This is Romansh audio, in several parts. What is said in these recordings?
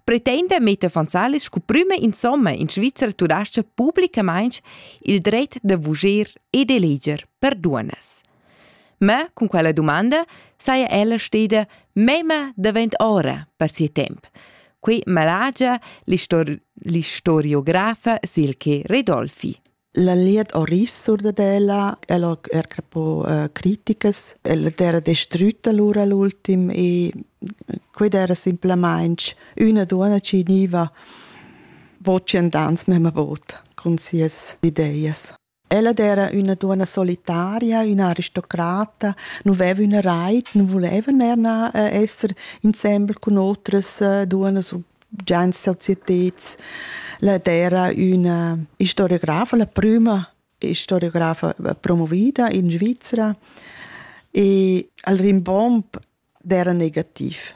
pretenda Meta Fonsalis sco prüma insomma in Svizzer tudascha publicamaing il dret da vuger e d'eleger per duonnas. Ma cun quella domanda saja ella steda mema davent ora per sia temp. Qui malagia l'histor- l'historiografa Silke Redolfi. La liet oris sur dad ella, el ho er capo uh, criticas, el era distrütta lura l'ultim e quid era simplamaing üna duonna chi gniva vocendans mema vot cun sias ideias. Ella era üna duonna solitaria, üna aristocrata, non veva üna rait, non voleva er na uh, esser insembel cun otras uh, duonnas gens societeds. La dera üna historiografa, la prüma historiografa eh, promovida in Svizzera e al rimbomb d'era negativ.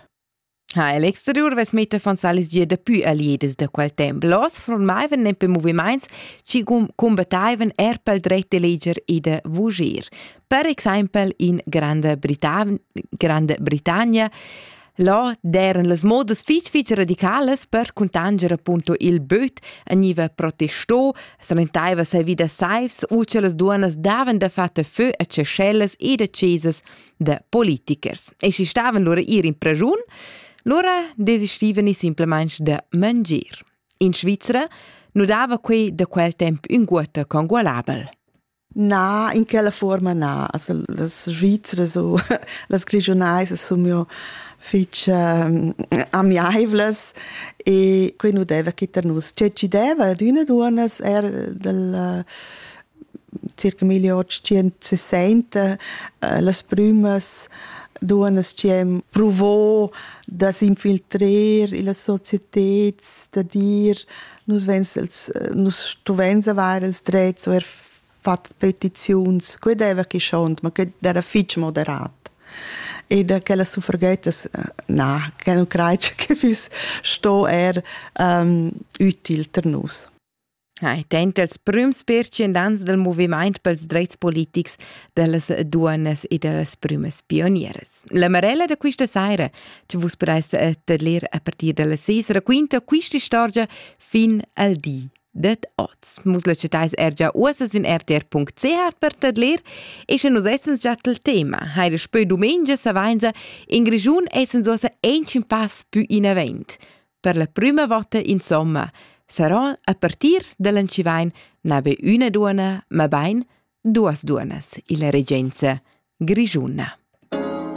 Ha el exterior ves meter von Salis gia dapü aliedes da quel temp. Los formaiven nempe movimaints ci combattaiven er pel dret de leger e de voger. Per exempel in Granda, Britan Granda Britannia Là d'eran las modas fich fich radicalas per cuntanger appunto il böt, gniva protestò, salentaiva sai vi da saivs u cha las duonnas davan da fatta fö a cescellas e da chesas da politikers. E schi stavan lura ir in prajun, lura desistivani simplamaing da mangir. In Svizra nu dava quei da quel temp ünguotta congualabel. Na, in quella fuorma na. Also las Svizras u las Grischunais sun mio fich ehm, amiaivlas e quai nu deva chi tar nus. Che chi deva ad üna duonnas er dal circa 1860 eh, las prümas duonnas chi hem pruvo da s'infiltrer illa societed, da dir nus vegns els, nus stuveins avair els drets o er fatg petiziuns, quei deva chi schont, ma quei era fitg moderat. E da quella suffragettas, na, che non creid che füss sto er um, util per nus. Hai tenta els prüms percendans del moviment pels dreits politics dellas duonas e dellas prümas pionieras. La Marella da questa saira ci vus per essere de ler a partir dalla ses raquinta questa storia fin al di det oz. Mus la citais er già uossa sün rtr.ch per tedler e sche nus essens già tel tema. Heide spö domenica savenza in Grigiun essens uossa ancin pass più in avant. Per la prima volta insomma sarà a partir dall'Ancivain nabe üna duona, ma bain duas duonas illa regenza grigiuna.